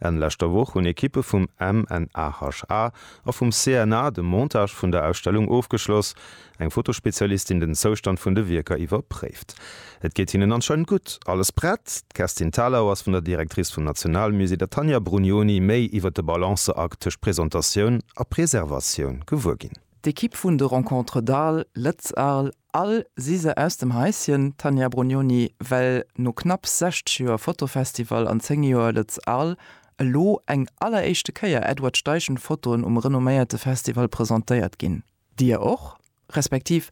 Enn leschter Woch hunn Ekippe vum MNHA a vum CNA de Montage vun der Ausstellung ofgeschloss, eng Fotospezialistin den Zoustand vun de Wierker iwwerpréift. Et geet hinnen anscheinend gutt. Alles prett? D'Kerstin Thalau ass vun der Directrice vum Nationalmusée, der Tanja Brugnoni, méi iwwer de Balanceakt tëscht Presentatioun a Preservatioun gewuer ginn. D'Ekipp vun de Rencontres d'Arles, Lëtz-Arles, All si se aus dem Haischen, d'Tania Brugnoni, well no knapps 60 Joer Fotofestival an 10 Joer Lët'z Arles elo eng alleréischte Kéier Edward Steichen Fotoen um renomméierte Festival presentéiert ginn. Dir och? Respektiv,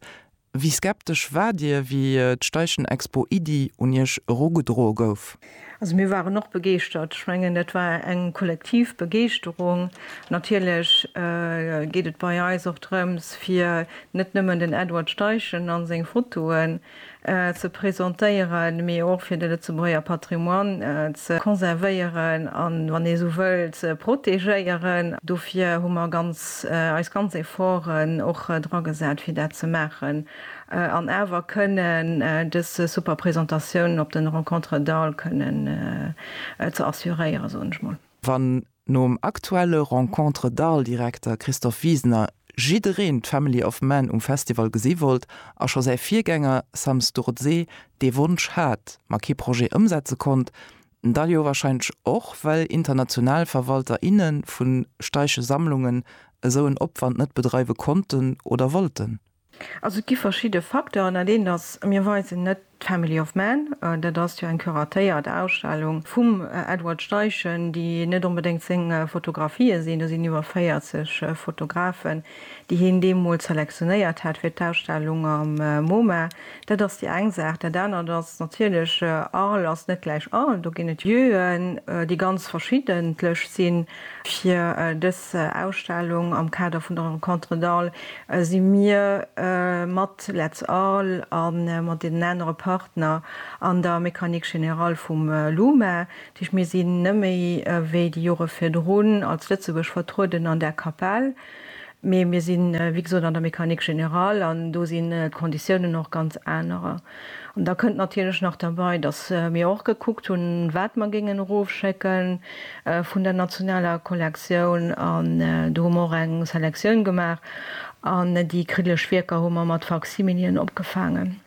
wéi skeptesch war Dir, wéi d'Steichen Expo Iddi un Iech erugedroe gouf? Also mir waren och begeeschtert. Ech mengen, dat war eng kollektiv Begeeschterung. Natierlech geet et bei eis och drëms, fir net nëmmen den Edward Steichen a seng Fotoen ze presentéieren, mee och fir de Lëtzebuerger Patrimoine ze konservéieren a wann ee sou wëll ze protegéieren. Dofir hu mer eis ganz Efforten och dra gesat, fir dat ze maachen. An awer kënnen dës super Presentatiounen op den Rencontres d'Arles kënnen ze assuréieren, soen ech mol. Wann nom aktuelle Rencontres d'Arles Direkter Christophe Wiesner jiddereen d'Family of Man um Festival gesi wollt a scho säi Virgänger Sam Sturdé dee Wonsch hat, ma kee Projet ëmsetze konnt, da jo wahrscheinlech och well international Verwalter, inne vu staische Sammlungen esou en Opwand net bedreiwe konnten oder wollten. Also et gi verschidde Facteuren. Dat eent ass, mir weisen net d'Family of Man. Dat ass jo eng curatéiert Ausstellung vum Edward Steichen, déi net onbedéngt seng Fotografië sinn. Do sinn iwwer 40 Fotografen, déi hien deemools selektionéiert hat fir d'Ausstellung am Moma. Dat ass déi eng Saach. Dat anert ass natierlech, Arles ass net gläich Arles. Do ginn et Lieuen, déi ganz verschiddentlech sinn. Fir dës Ausstellung am Kader vun der Rencontres d'Arles si mir mat Let's Arles a mat deenen anere Partner an der Mécanique Générale vum LUMA. Dat heescht, mir sinn, nëmme wéi déi Jore virdrun, als Lëtzebuerg vertrueden an där Kapell. Mee mir sinn, wéi gesot, an der Mécanique générale an do sinn d'Konditiounen och ganz anerer. An da kënnt natierlech nach derbei, dass mir och gekuckt hunn, wat mer géingen erofschécke vun der nationaler Kollektioun. An do hu mer och eng Selektioun gemaach an déi kriddeleg Wierker hu mer mat Faksimilien opgefaangen.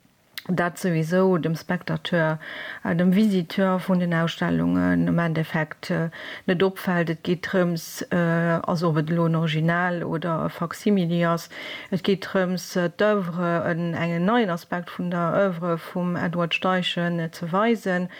dat souwisou dem Spectateur, dem Visiteur vun den Ausstellungen am Endeffekt net opfält. Et geet drëms, also ob et elo en Original oder e Faksimili ass, et geet drëms d'Oeuvre, engen neien Aspekt vun der Oeuvre vum Edward Steichen ze weisen.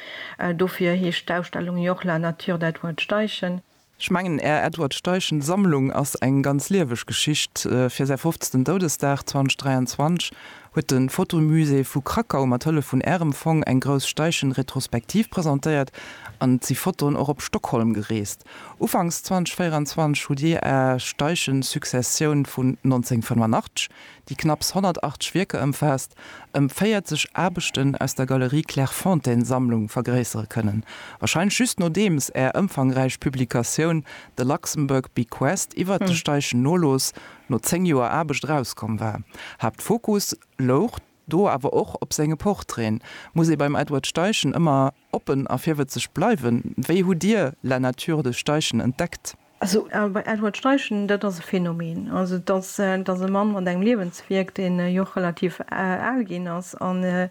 Dofir heescht d'Ausstellung jo och La nature d'Edward Steichen. Ech mengen, Är Edward Steichen Sammlung ass eng ganz lieweg Geschicht. Fir säi fofzten Doudesdag 2023 huet de Fotomusée vu Krakau mat Hëllef vun Ärem Fong eng grouss Steichen-Retrospektiv presentéiert an et si Fotoen och op Stockholm gereest. Ufanks 2024 hutt Dir Är Steichen-Successioun vun 1985 déi knapps 180 Wierker ëmfaasst, ëm 40 Aarbechten aus der Galerie Clairefontaine-Sammlung vergréissere kënnen, wahrscheinlech just nodeems Är ëmfangräich Publikatioun The Luxembourg Bequest iwwert de Steichen Nolooss no zéng Joer Aarbecht erauskomm war. Haaptfokus louch do awer och op senge Portraiten, muss ee beim Edward Steichen ëmmer. Oppen a virwëtzeg bleiwen. Wéi hutt Dir La nature de Steichen entdeckt? Also bei Edward Steichen, dat ass e Phänomen. Also dat ass e Mann mat engem Liewenswierk, deen jo och relativ al ginn ass. An ech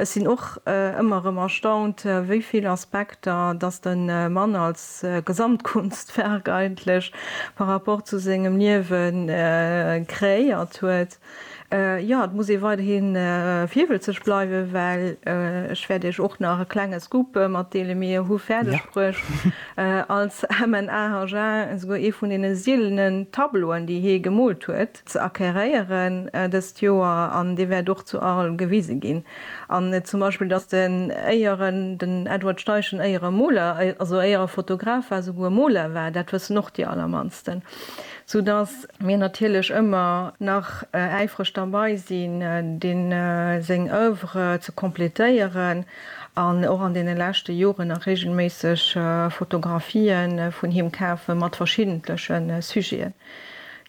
sinn och ëmmer erëm erstaunt, wéi vill Aspekter datt de Mann als Gesamtkunstwerk eigentlech par rapport zu sengem Liewe kréiert huet. Jo, et muss ee weiderhi virwëlzeg bleiwen, well ech wäert Iech och nach e klenge Scoop matdeelen, Mir hu fäerdeg bruecht als MNA Agen esouguer ee vun deene sielenen Tableauen, déi hie gemoolt huet, ze acqueréieren dëst Joer, an dee wäert och zu Arles gewise ginn. An zum Beispill, dass den Éieren, den Edward Steichen Éiere Moler, also Éiere Fotograf war, esouguer Moler war, dat wëssen och déi allermannsten, soudass. mir natierlech ëmmer nach äifreg derbei sinn, deem seng Oeuvre ze completéieren an och an deene leschte Joren nach regelméisseg Fotografie vun him kafe mat verschiddentleche Sujeten.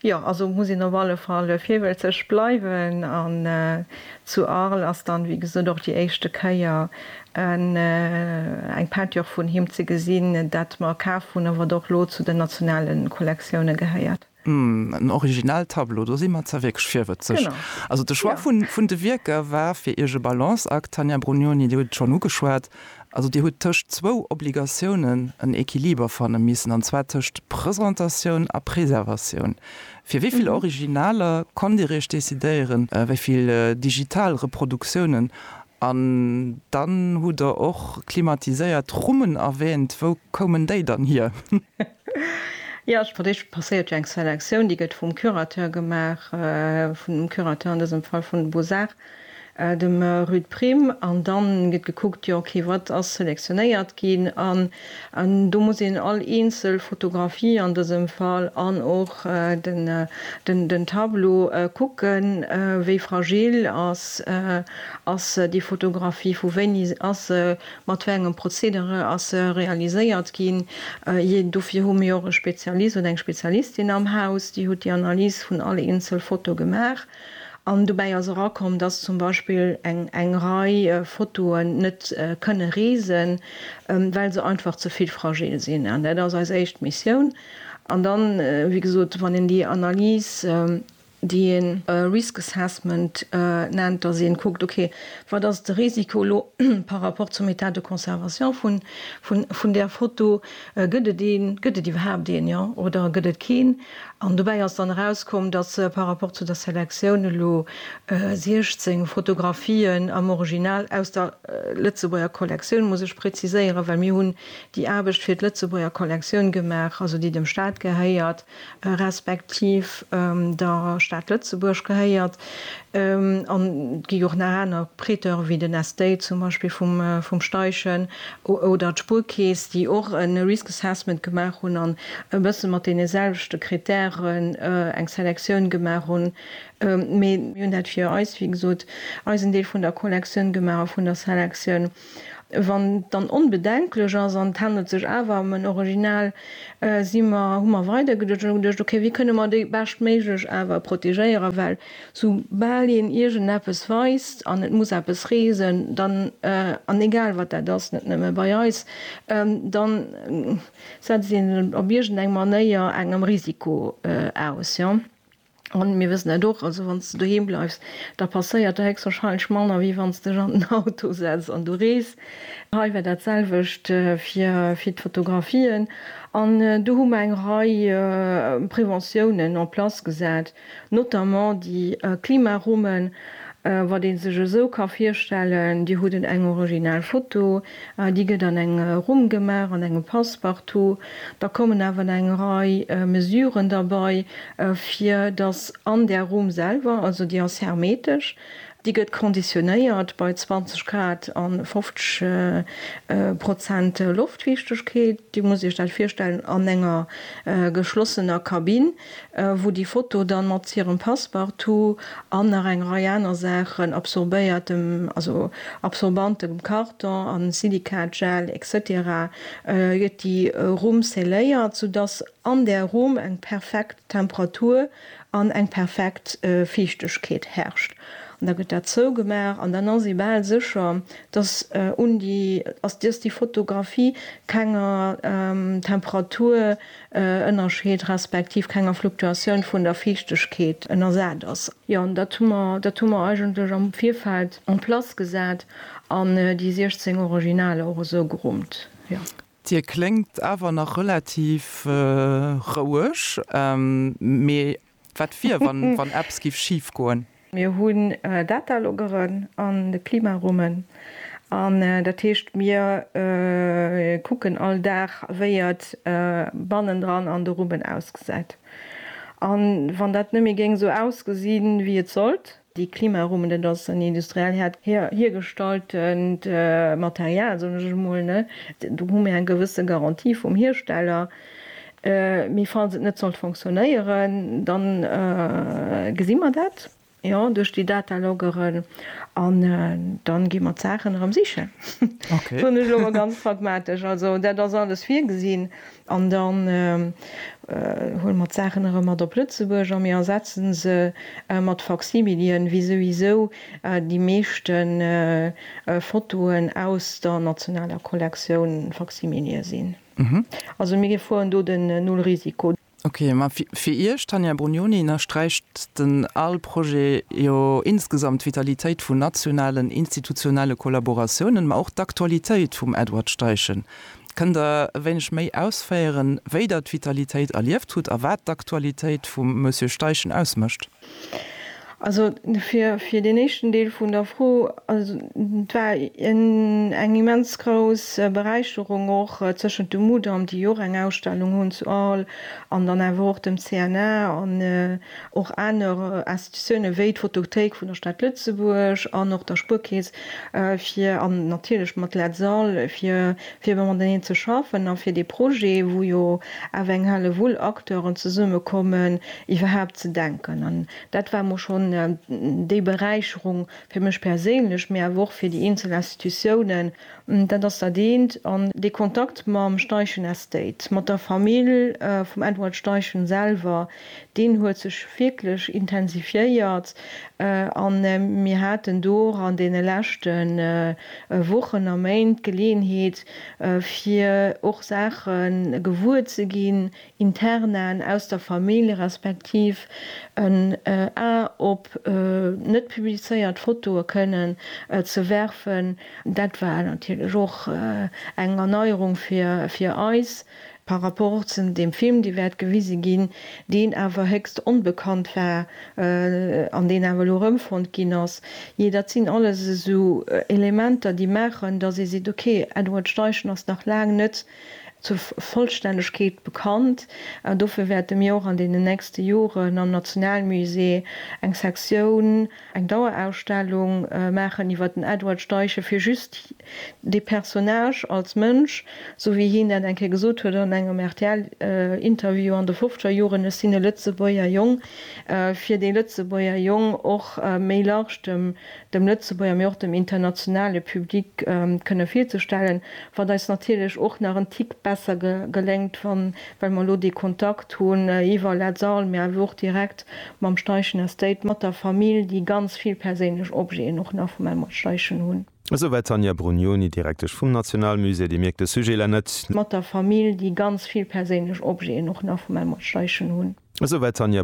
Jo, also muss een op alle Fall virwëlzeg bleiwen an zu Arles ass dann, wéi gesot, och déi éischte Kéier eng Peinture vun him ze gesinn, dat mer kaf hunn a wat och elo zu den nationale Kollektioune gehéiert. Hm, en Original-Tableau, do si mer zwar wierklech virwëtzeg. Also de Choix vun de Wierker war fir Iech e Balanceakt, Tania Brugnoni, Dir hutt et schonn ugeschwat. Also Dir hutt tëscht zwou Obligatiounen en Equiliber fanne missen, an zwar tëscht Presentatioun a Preservatioun. Fir wéi vill Originaler konnt Dir Iech decidéieren, wéi vill digital Reproduktiounen? An dann hutt Der och klimatiséiert Rummen erwäänt. Wou koumen déi dann hier? Jo, fir d'éischt passéiert jo eng Selektioun, déi gëtt vum Curateur gemaach, vum Curateur an dësem Fall vun de Beaux-Arts. dem Ruud Prim, an dann gëtt gekuckt, jo ok, wat ass selektionéiert ginn, an do muss een all eenzel Fotografie an dësem Fall an och den Tableau kucken, wéi fragil ass déi Fotografie, vu wéini ass se, mat wéi engem Prozedere ass se realiséiert ginn, dofir hu mir och e Spezialist oder eng Spezialistin am Haus, déi huet déi Analys vun all eenzel Foto gemaach. An dobäi ass erakomm, dass zum Beispill eng Rei Fotoen net kënne reesen, well se einfach ze vill fragil sinn. An dat ass eis éischt Missioun. An dann, wéi gesot, wann een déi Analys, déi ee Risk Assessment nennt, dass ee kuckt, okay, wat ass de Risiko elo par rapport zum État de conservation vun där Foto, gëtt et een, gëtt et iwwerhaapt een, jo, oder gëtt et keen? An dobäi ass dann erauskomm, datt par rapport zu der Selektioun elo 16 Fotografien am Original aus der Lëtzebuerger Kollektioun, muss ech preziséieren, well mir hunn déi Aarbecht fir d'Lëtzebuerger Kollektioun gemaach, also déi dem Staat gehéiert, respektiv der Stad Lëtzebuerg gehéiert, An et gi jo och nach aner Prêteure wéi den Estate zum Beispill vum Steichen oder d'Spuerkeess, déi och e Risk Assessment gemaach hunn an e bësse mat deene selwechte Krittären eng Selektioun gemaach hunn. Mee mir hunn dat fir eis, wéi gesot, eisen Deel vun der Collectioun gemaach a vun der Selektioun. Wann et dann onbedenklech ass an et handelt sech awer ëm en Original, si mer, hu mer weidergeduecht an hu geduecht, ok, wéi kënne mer déi beschtméiglech awer protegéieren, well sou bal een iergendeppes weist an et muss eppes reesen, dann, an egal wat dat ass, net nëmme bei eis, dann setzt een sech op iergendeng Manéier engem Risiko aus. An mir wëssen dat och, also wann s de doheem bleifs, da passéiert der héchstwahrscheinlech manner, wéi wann s dech an den Auto setz an du rees. Hei war dat selwecht fir d'Fotografien. An do hu mer eng Rei Preventiounen en place gesat, notamment déi Klimarummen, wat ee sech esou ka virstellen, Dir hutt en eng original Foto, Déi gëtt an eng Rumm gemaach, an engem Passepartout. Da kommen awer eng Rei Mesuren derbei, fir dass an där Rumm selwer, also déi ass hermetesch, déi gëtt konditionéiert bei 20 Grad a 50 Prozent Loftfiichtegkeet, Dir musst Iech dat virstellen an enger geschlossener Kabinn. wou déi Foto dann mat hirem Passepartout an nach eng Rei aner Saachen, absorbéiertem, also absorbantem Karton a Silikat-Gel, etc. Gëtt déi Rumm scelléiert, sou dass an där Rumm eng perfekt Temperatur an eng perfekt Fiichtegkeet herrscht. An da gëtt dat zougemaach an dann ass ee bal sécher, dass un déi, dass déi Fotografie kenger Temperatur Ënnerscheed respektiv kenger Fluktuatioun vun der Fiichtegkeet ënnersat ass. Jo, an dat hu mer, dat hu mer eigentlech am Virfeld en place gesat an déi 16 Originaler och esou gerummt, jo. Dir kléngt awer nach relativ roueg, mee Wat wier, wann eppes géif schif goen? Mir hunn Datalogeren an de Klimarummen. An dat heescht, mir kucken all Dag, wéi et bannendran an de Rummen ausgesäit. An wann dat net méi géing esou ausgesinn, wéi et sollt, Déi Klimarumen, dat ass en industriell häert hiergestalltent Material, soen ech emol. Do hu mir eng gewësse Garantie vum Hiersteller. Mee falls et net sollt fonctionnéieren, da gesi mer dat, jo, duerch déi Dataloggeren. An da gi mer d'Saachen erëm sichen, soen ech elo mol ganz pragmatesch. Also dat ass alles virgesinn. An dann huele mer d'Saachen erëm mat op Lëtzebuerg a mir ersetze se mat Faksimilien, wéi souwisou déi meeschte Fotoen aus der nationaler Kollektioun Faksimilie sinn. Also mir gefoen do den Null-Risiko. Ok, ma fir Iech, d'Tania Brugnoni, ënnersträicht den ale Projet jo insgesamt d'Vitalitéit vun nationalen institutionelle Kollaboratiounen, ma och d'Aktualitéit vum Edward Steichen. Kënnt Der e wéineg méi ausféieren, wéi Der d'Vitalitéit erlieft hutt a wat d'Aktualitéit vum Monsieur Steichen ausmécht? Also fir deen éischten Deel vun der Fro, et war eng immens grouss Beräicherung och tëschent dem Mudam, déi och eng Ausstellung hunn zu Arles, an dann awer och dem CNA an och aner Institutiounen, wéi d'Photothéik vun der Stad Lëtzebuerg an och der Spuerkeess, fir, an natierlech mat LSAL, fir fir mateneen ze schaffen a fir dee Projet, wou jo awer eng Hellewull Acteuren zesummekommen, iwwerhaapt ze denken. An dat war emol schonn déi Beräicherung fir mech perséinlech, mee awer och fir déi eenzel Institutiounen. Dat ass dat eent. An dee Kontakt mam Steichen Estate, mat der Famill vum Edward Steichen selwer, Deen huet sech wierklech intensifiéiert a mir haten do och an deene leschte Wochen a Méint d'Geleeënheet, fir och Saache gewuer ze ginn, Internen aus der Famill, respektiv en A op net publizéiert Fotoe kënnen ze werfen. Dat war natierlech och eng Erneierung fir eis. Par rapport zum dem Film dee wäert gewise ginn, deen awer héchst onbekannt war an deen awer elo erëmfonnt ginn ass, jee dat sinn alles esou Elementer déi maachen, datt ee seet, ok, Edward Steichen ass nach laang net zur Vollstännegkeet bekannt. An dofir wäerte mir och an deenen nächste Joren am Nationalmusée eng Sektioun eng Dauerausstellung maachen iwwer den Edward Steichen, fir just dee Personnage als Mënsch, esou wéi hien dat eng Kéier gesot huet an engem RTL-Interview an de fofzeger Joren, Ech sinn e Lëtzebuerger Jong, fir dee Lëtzebuerger Jong och méi large dem Lëtzebuerger, mee och dem internationale Public kënne virzestellen, wat eis natierlech och nach en Tick besser geléngt, well mer elo dee Kontakt hunn iwwer Let's All, mee awer och direkt mam Steichen Estate, mat der Famill, déi ganz vill perséinlech Objeten och nach vum Elmar Steichen hunn. Esouwäit d'Tanja Brugnoni, Direktesch vum Nationalmusée, déi mierkt de Sujet la net. Mat der Famill, déi ganz vill perséinlech Objeten och nach vum Elmar Steichen hunn. Esouwäit d'Tanja.